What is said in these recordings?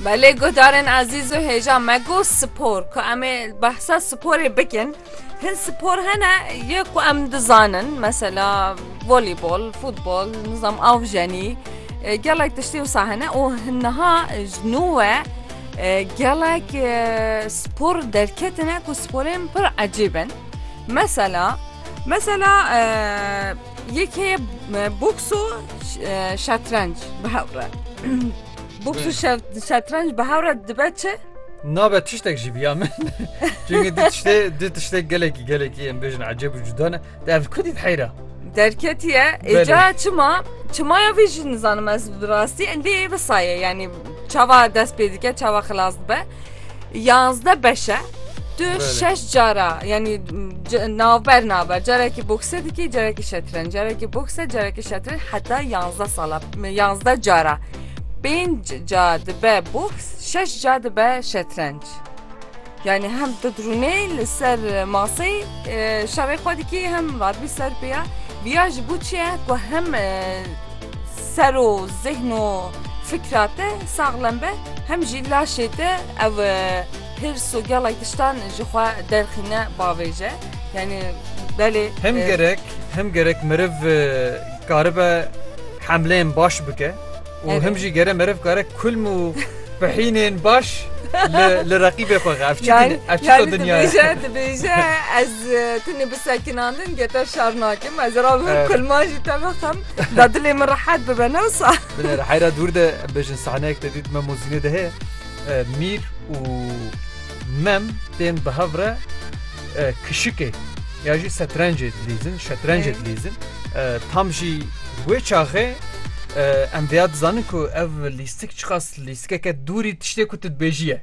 Belê guhdarên ezîz û hêja me got spor ku em ê behsa sporê bikin. Hin spor hene ye ku em dizanin mesela volîbol, futbol, nizam avjenî e, gelek tiştê wisa hene û hin niha ji nû we e, gelek e, spor derketine ku sporên pir ecîb in. Mesela mesela e, Yekê ye boks û şetrenc bi hev re. Boks û şetrenc bi hev re dibe çi? Nabe tiştek jî biya min. Çünkü du tiştê du tiştê gelekî gelekî em bêjin ecêb û cuda ne. De ev kudî heyra. Derketiye Belê. êca çima çimaya vê jî nizanim ez bi rastî lê visa ye yanî çava dest pê dike çava xilas dibe. Yanzde beş e. Tu şeş cara yanî navber naber carekî bokse dikî carekî şetrenc carekî bokse carekî şetrenc heta yanzde sala yanzde cara pênc ca dibe boks şeş ca dibe şetrenc. Yani hem tedrûnê li ser maseyê şerê xwe dikî hem radbî ser pêya viya ji bo çi ye ku hem Ser û zihn û fikra te saxlem be hem jî laşê te ev hirs û gelek tiştan ji xwe derxîne bavêje. Yanî belê. Hem gerek hem gerek meriv karibe hemleyên baş bike û hem jî gere meriv kare kulm û pihînên baş li reqîbê xwe ev çi dîn ev çi to dinya ye. Dibêje ez tu nê bisekinandin ge te şer nakim ez ra kulman jî te bixim. دا dilê min rehet bibe ne wisa. Bine li heyra dûr de em bêjin sahneyek te dît me mozînê de heye mîr û mem tên bi hev re kişikê ya jî setrencê dilîzin şetrencê dilîzin tam jî wê çaxê em vêya dizanin ku ev lîstik çiqas lîstikeke dûrî tiştê ku tu dibêjiye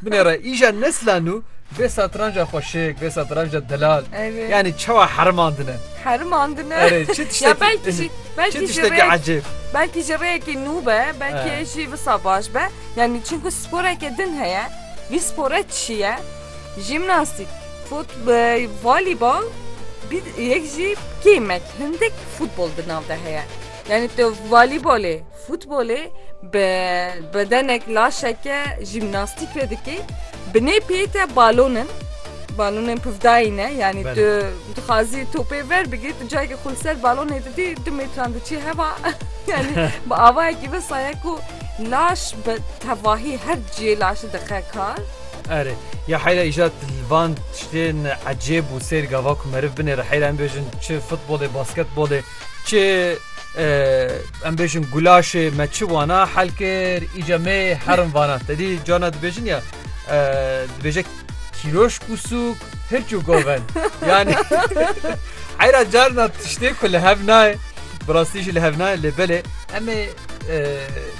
binê re îja neslan û vê satranca xweşik vê satranca delal yanî çawa hermandine Herimandine. Erê çi Ya tiştekî belkî jî çi belkî jî tiştekî rêyek ecêb. belkî jî rêyekî nû be, belkî He. jî wisa baş be. Yanî çimkû sporeke din heye. Vî spore çi ye? Jîmnastîk, fut e, volîbol, bî yek jî kêmek hindik futbol di nav de heye. Yanî tu volîbolê Futbolê bi bedenek laşeke jîmnastîk ve dikê. Binê pê te balon in. Balonên pivdayî ne. Yanî tu dixwazî topê ver bigirî, tu cayekê xwe li ser balonê didî du mêtran diçî heva. Yanî bi avayekî ve saye ku laş bi tevahî her ciyê laşê dixe kar. Erê, ya heyra îjad van tiştên ecêb û sêr gava ku meriv binêre heyra em bêjin çi futbolê, basketbolê, Çi em bêjin gulaşê me çi wana hel kir îca me herin vana tedî cana dibêjin ya dibêje kîroş û sûk hirçû goven yani heyra carna tiştê ku li hev nayê bi rastî jî li hev nayê lê belê em ê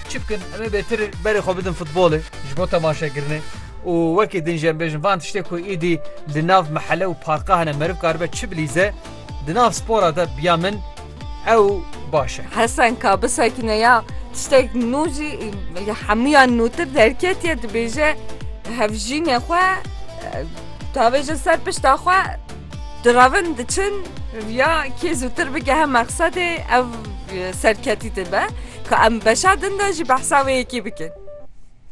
çi bikin em ê bêtir berê xwe bidin futbolê ji bo temaşekirinê û wekî din jî em bêjin van tiştê ku îdî li nav mehele û parka hene meriv karibe çi bilîze Di nav spora de biya min ew baş e. Hesen ka bisekine ya tiştek nû jî li hemûyan nûtir derketiye dibêje hevjînê xwe tavêje ser pişta xwe direvin diçin ya kê zûtir bigehe mexsedê ev serketî dibe ka em beşa din de jî behsa wê yekê bikin.